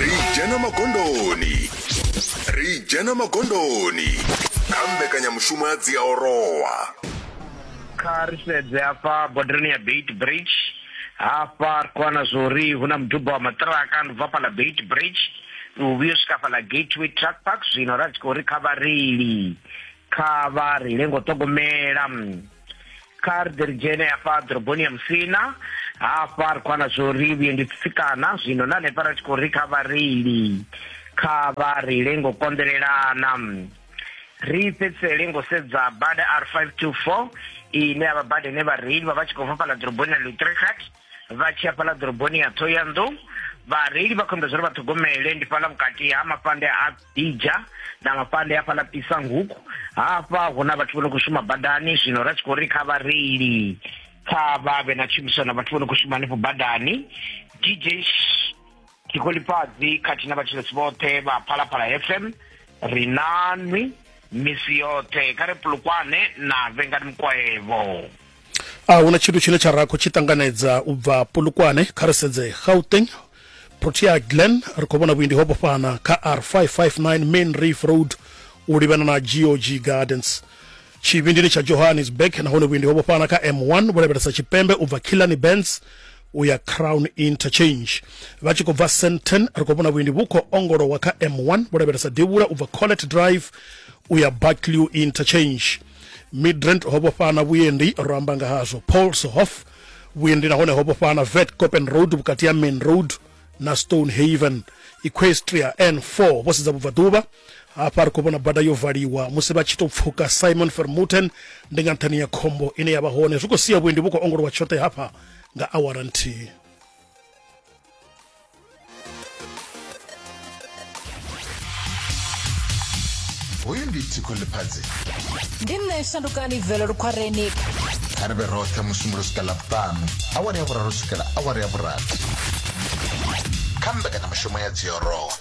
ri dzhena magondoni ri dzhena magondoni kha mbekanyamushumo ya dziaorowa kha ri sedze hafha bodarani ya beit bridge hafha ri khou wana zwa uri hu na muduba wa maṱiraka ndi bva fhaḽa beit bridge u vhuya u swika fhaḽa gateway truck park zwino ra tshi khou ri kha vhareili kha vha ri lengo ṱhogomela kha ri ḓi ri dzhene hafha ḓoroboni ya musina hafha ri khou ana zwo ri vhuendi tsitsikana zwino na hanefha ra tshi khou ri kha vhareili kha vha ri lengo konḓelelana ri fhedzisele ngo sedza bada r 524 ine ya vha bada ine vhareili vha vha tshi khou bva fhaḽa ḓoroboni ya lutrichat vha tshi ya fhaḽa ḓoroboni ya thoyandou vhareili vha khou imbedza uri vha ṱhogomele ndi fhaḽa vhukati ha mafhande a Ija na vha fhande hafha ḽa Pisanguku hafha hu na vhathu vho no khou shuma badani zwino ra tshi khou ri kha vhareili kha vha vhe na tshumisano na vhathu vho no khou shuma hanefho badani DJ Ṱhikholifhadzi khathihi na vhatshilesi vhoṱhe vha Phalaphala FM ri na nwi misi yoṱhe kha ri pulukwane na vhengani mukwaevo. a huna tshithu tshine tsha rakho tshi ṱanganedza u bva polokwane kha ri sedze gauteng protea glen ri khou vhona vhuendi ho vhofhana kha r559 main reef road u livhana na gog gardens tshivhindini tsha johannesburg nahone vhuendi ho vhofhana kha m1 vho lavhelesa tshipembe u bva killani bands u ya crown interchange vha tshi khou bva senten ri khou vhona vhuendi vhu khou ongolowa kha m1 vho lavhelesa devhula u bva collet drive u ya barclew interchange midrand ho vhofhana vhuendi ro amba nga hazwo polshof vhuendi nahone ho vhofhana vet copen road vhukati ha main road na stone haven equestria n4 vho sedza vhubvaḓuvha hafha ri khou vhona bada yo valiwa musi vha tshi tou pfuka simon fermuten ndi nga nṱhani ya khombo ine ya vha hone zwi khou sia vhuendi vhu khou ongolowa tshoṱhe hafha nga awara nthihi hoyu ndi tiko ḽifhadzi ndi nṋe shandukani bvelo lukhwareni kha ri vhe roṱhe musumbulo swika ḽavhuṱanu awara ya vhuraru swikela awara ya vhurathi kha mbekanyamushumo ya dziorowa